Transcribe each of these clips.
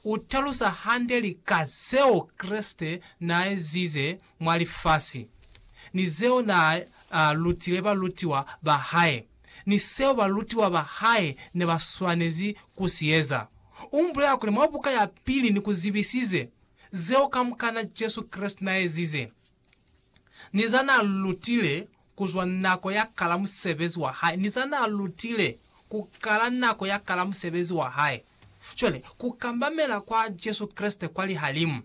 U talusa hande lika zeo Kreste n'a ezize mwa lifasi, ni zeo n'a lutile balutiwa ba hae, ni seo balutiwa ba hae ne ba swanezi ku si eza. U bulela kuli mwa buka ya pili ni ku zibisize zeo kamukana Jesu Kreste n'a ezize. ni za n'a lutile ku zwa nako ya kala musebezi wa hae, ni za n'a lutile ku kala nako ya kala musebezi wa hae. Cwale, ku kambamela kwa Jesu Kreste kwa lihalimu,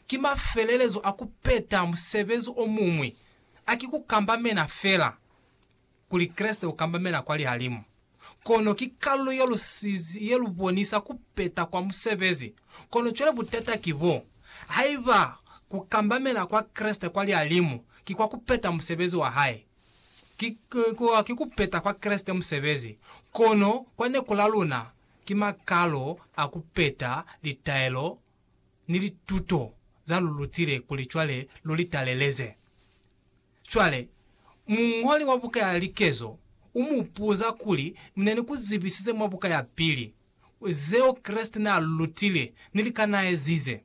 ki mafelelezo a ku peta musebezi o muñwi, a ki ku kambamena fela. kuli Kreste ukambamela kwa lihalimu, kono ki kalulo ye lusizi ye lubonisa kupeta kwa musebezi. Kono cwale butata ki bo, Haiba kukambamela kwa Kreste kwa lihalimu ki kwa kupeta musebezi wa hae, ki, ki, ki kupeta kwa Kreste musebezi, kono kwa neku la luna ki makalo a kupeta litaelo ni lituto za lu lutile kuli cwale lu li taleleze. Cwale, muñoli wa buka ya Likezo u mu puza kuli, Mine ni ku zibisize mwa buka ya pili, zeo Kreste n'a lu lutile, ni lika n'a ezize.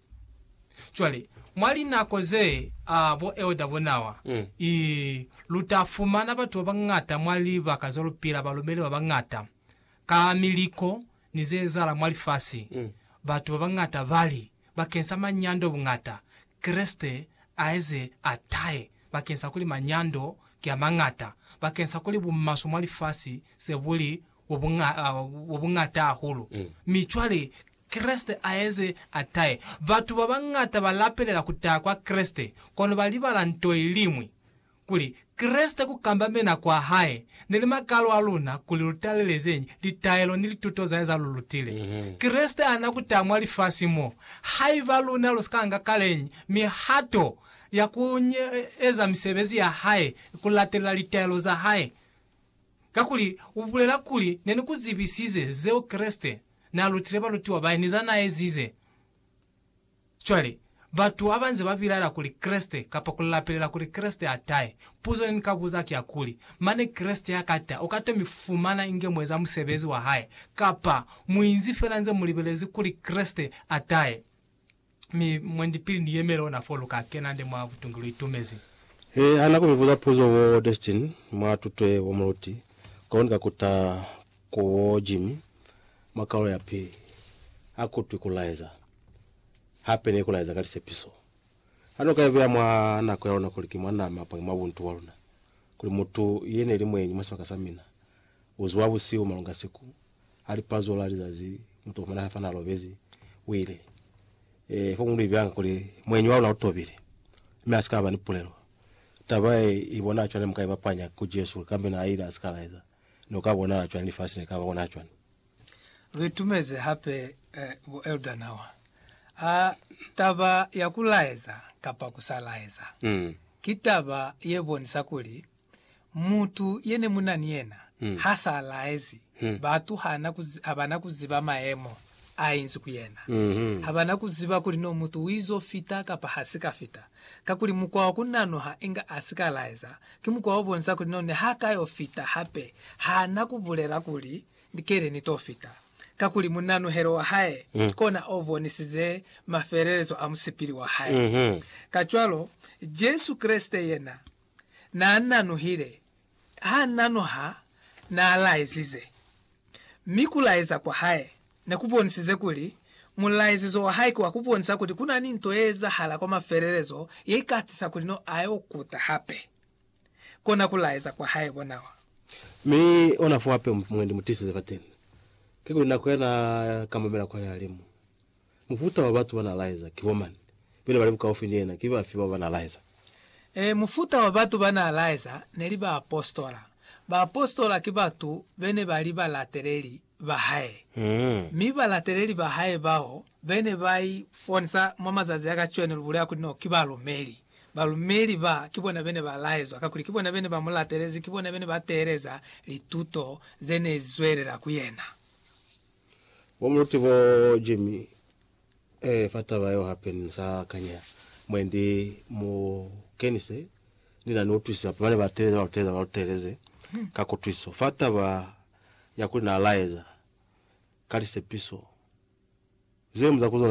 Cwale, mwa linako ze, a, bo Elder Bonawa, i, lu ta fumana batu ba bañata mwa libaka ze lu pila, balumeli ba bañata, ka miliko, ni ze ezahala mwa lifasi, batu ba bañata ba li, Bakeng sa manyando buñata, Kreste a eze a tahe, bakeng sa kuli manyando ki a mañata, bakeng sa kuli bumaswe mwa lifasi se bu li bwa buñata hahulu, mi cwale Kreste a eze a tahe. Batu ba bañata ba lapelela ku taha kwa Kreste, kono ba libala nto iliñwi, kuli Kreste ku kambamena kwa hae ni limakalo a luna kuli lu talelezeñi litaelo ni lituto zae za lu lutile. Kreste ana ku ta mwa lifasi mo, haiba luna lu si ka nga kaleñi mihato ya ku eza misebezi ya hae ni ku latelela litaelo za hae. Kakuli u bulela kuli, Ne ni ku zibisize zeo Kreste n'a lutile balutiwa bae ni za n'a ezize. Cwale, batu habanze ba bilaela kuli Kreste, kapa ku lapelela kuli Kreste a tahe, puzo ne ni ka buza ki ya kuli, Mane Kreste ha ka ta, u ka to mi fumana inge mu eza musebezi wa Hae, kapa mu inzi fela nze mu libelezi kuli Kreste a tahe? Mi, mwendi, pili ni yemele ona foo, lu ka kena nde mwa butungi lu itumezi. He, ha na ku mi buza puzo bo Destin, mwa tutwe bo muluti, kono ni ka kuta ku bo Jimmy, mwa Kaulo ya Pili. Ha ku twi ku laeza. hape ne ku laeza ka lisepiso. Ha no ka ibeya mwa nako ya luna kuli ki mwa nama apange mwa buntu bwa luna, kuli mutu ye ne li mweñi mwa sibaka sa mina, u zuha busihu malunga siku, ha li pazulo la lizazi, mutu o fumana hae fana a lobezi, u ile, Ee, fo mu lu ibeyanga kuli mweñi wa luna u tobile, mi a si ka ba ni pulelo. Taba ye i bonaha cwani? Ne mu ka i bapanya ku Jesu kuli kambe na ile a si ka laeza, ne u ka bonahala cwani lifasi ne li ka ba ona ha cwani? luitumezi hape bo Elder Nawa. A taba ya kulaeza kapa kusalaeza mm. ki taba yebonisa kuli mutu yene muna ni yena mm. ha sa laezi mm. batu habana kuziba maemo a inzi ku yena mm -hmm. habana kuziba kuli no mutu uizo fita kapa ha si ka fita kakuli mukwa wa kunanoha inga a si ka laeza Ki mukwa o bonisa kuli none ha ka yo fita hape. Ha na ku bulela kuli, Ni keli ni to fita. Kakuli munanuhelo wa hae kona o bonisize mafelelezo a musipili wa hae. Kacwalo, Jesu Kreste yena na nanuhile, ha nanuha na laizize. Mi ku laeza kwa hae ne ku bonisize kuli mulaezizo wa hae ki wa ku bonisa kuli ku na ni nto ye ezahala kwa mafelelezo ye i ka tisa kuli no a yo kuta hape. Kona ku laeza kwa hae ko nawa. Mi ona fo hape mwendi mu tisize fateni, kikuli nako ya na ka mamela kwa lihalimu. Mufuta wa batu ba n'a laeza ki bo mañi, mi ne ba li bukaufi ni yena ki bafi bao ba n'a laeza? Ee, mufuta wa batu ba n'a laeza ne li baapositola. Baapositola ki batu be ne ba li balateleli ba hae. Mi balateleli ba hae bao be ne ba iponisa mwa mazazi a kacweno, lu bulela kuli no ki balumeli. Balumeli ba, ki bona be ne ba laezwa, kakuli ki bona be ne ba mu latelezi, ki bona be ne ba teeleza lituto ze ne li zwelela ku yena. Bo muti bo Jimmy eh fa taba yeo hape ni sa kanya mwendi mu kenise ni na ni utwisisa hape bane ba teleza ba lu teleza ba lu teleze ka kutwiso fa taba ya kuli na laeza ka lisepiso zemu za ku zona